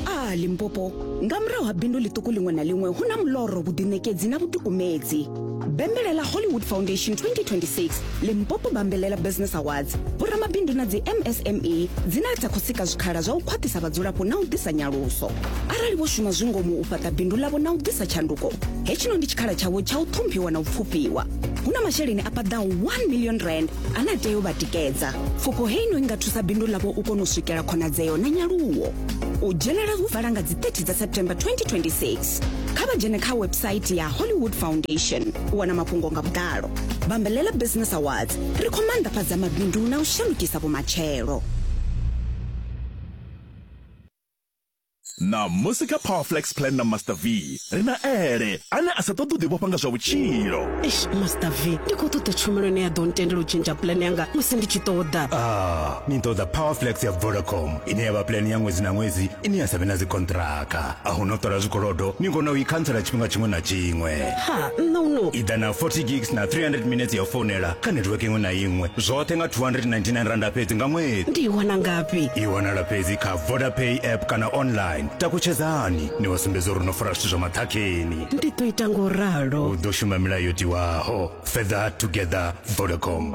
a limpopo nga murahu ha bindu ḽiṱuku ḽiṅwe na ḽiṅwe hu na muloro vhuḓiṋekedzi na vhuḓikumedzi bembelela hollywood foundation 2026 limpopo bambelela business awards vhoramabindu na dzi msme dzine dza khou sika zwikhala zwa u khwaṱhisa vhadzulapo na u ḓisa nyaluso arali vho shuma zwi ngomu u fhaṱa bindu ḽavho na u ḓisa tshanduko hetshino ndi tshikhala tshavho tsha u ṱhomphiwa na u pfufhiwa hu na masheleni a paḓaho 1 million rand a na tei u vha tikedza pfufho heino i nga thusa bindu ḽavho u kona u swikela khonadzeo na nyaluwo u dzhenela hu vala nga dzi 30 dza september 2026 kha vha dzhene kha website ya hollywood foundation u wana mafhungo nga vhuḓalo bambelela business awards ri khou maanḓafhadza mabindu na u shandukisa vhumatshelo Ṋamusi kha Power Flex Plan na Master V, ri na Ele, ane a sa ṱoḓi u ḓivhofha nga zwa vhutshilo. Eish, Master V, ndi khou ṱoḓa tshumelo ine ya ḓo ntendela u tshentsha plan yanga musi ndi tshi ṱoḓa. Ah, ni ṱoḓa Power Flex ya Vodacom, ine ya vha plan ya ṅwedzi na ṅwedzi ine ya sa vhe na dzikonṱiraka. A hu na u ṱola zwikolodo, ni kona u i khantsela tshifhinga tshiṅwe na tshiṅwe. ha nṋa u no iḓa na 40 gigs na 300 minutes ya u founela kha netiweke iṅwe na iṅwe zwoṱhe nga 299 randa fhedzi nga ṅwedzi ndi i wana ngafhi i wanala fhedzi kha vodapay app kana online takutshedzani ni wa sumbedza uri no fara zwithu zwa maṱhakheni ndi ḓo ita ngo ralo u ḓo shuma milayo yo tiwaho fetha together vodacom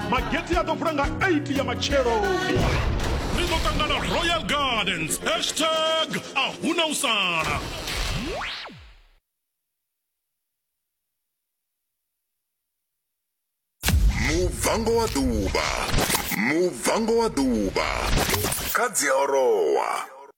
mageti a ḓo vula nga 8 ya matshelo ri ḓo ṱangana royal gardens hashtag a huna u sala mubvango wa ḓuvha mubvango wa ḓuvha kha dziorowa